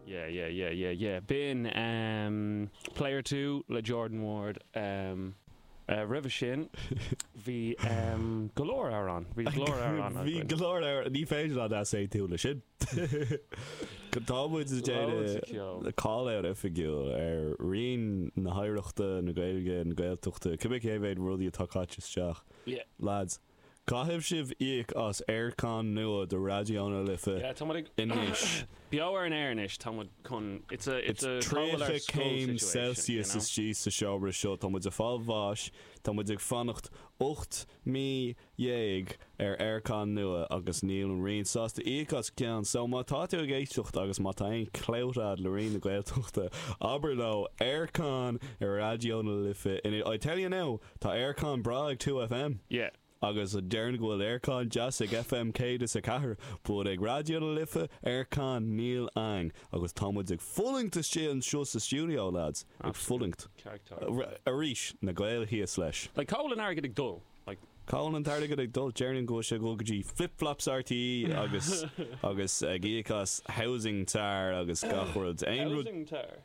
Yeah yeah yeah yeah yeah b'in ehm Player Two le Jordan Ward ehm eh roimhe sin bhí ehm go leor amhrán bhí go leor amhrán againn. Bhí go leor amhrán ní féidir leat easaontú leis sin. Tá muid ag déanamh call-out oifigiúil ar roinn na hoidhreachta, na Gaeilge, na Gaeltachta, cibé cé mhéad rudaí atá caite isteach lads. Caithfidh sibh íoc as aircon nua do Raidió na Life anois. Beo ar an aer anois, tá muid chun, it's a, it's a call-out ar scoil situation, you know. Is 30 céim celsius istigh sa seomra seo, tá muid ag fáil bháis, tá muid ag fanacht ocht mí déag ar aircon nua agus níl an Roinn sásta íoc as ceann. So má tá tú ag éisteacht agus má tá aon clout a'd le Roinn na Gaeltachta, abair leo, aircon i Raidió na Life anois, I tell you now, Tá aircon breá ag Two FM. Yeah. Agus déarfainn go bhfuil aircon deas ag FM 104, but ag Raidió na Life, aircon, níl a'inn. Agus tá muid ag fulaingt istigh anseo sa stiúideo, lads. Ag fulaingt. Arís, na Gaeil thíos leis. Like, cá bhfuil an airgead ag dul? Like. Cá bhfuil an t-airgead ag dul? Déarfainn go bhfuil sé ag dul go dtí flip-flops RTÉ agus agus ag íoc as housing tar agus gach rud. Housing tar?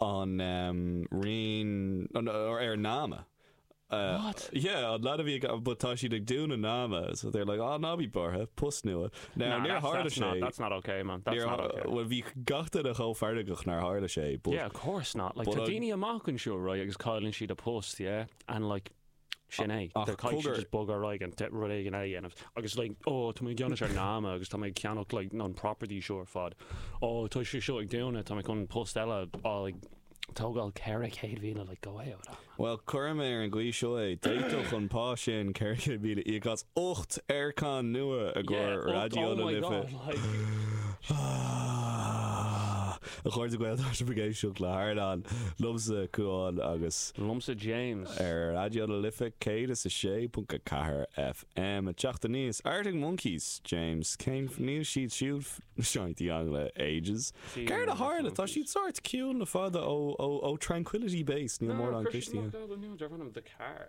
an Roinn, ar Nama. What? Yeah, an leaid a bhí ag, but tá siad ag dúnadh Nama, so they're like, ah, ná bí buartha, post nua. Now, Nah, níor that's, tharla that's sé. not, that's not ok, man, that's Níor, not ok. bhuel, bhí gach duine chomh feargach nár tharla sé, but, Yeah, of course not, like, but tá I, daoine amach anseo, right, agus cailleann siad a post, yeah, and, like, Sin é. Ach Tá Cogar- siad just bogadh ar aghaidh go rud éigin eile a dhéanamh. Agus like, ó, tá mé ag déanamh ar Nama agus tá mé ag ceannach like an property seo ar fad. Ó, tá sé seo ag daoine, tá mé chun post eile a like, tógáil ceithre chéad míle, like, go away with that. Bhuel, cuirfidh mé ar an gcaoi seo é, d'fhéadfadh an pá sin ceithre chéad míle íoc as ocht aircon nua ag Yeah, ocht, Raidió oh na my Life i. God, like, A chairde Gael, tá sibh ag éisteacht le hArdán, liomsa, Cuán agus. liomsa, James. ar Raidió na Life 106.4 FM. Ag teacht aníos, Arctic Monkeys, James. Cén f-, níl siad siúd f-, sa ndeángla le ages. Céard a tharla? Tá siad sórt ciúin le fada ó, ó, ó Tranquility Base, níl mórán cloiste a'inn. Deir an ainm The Car.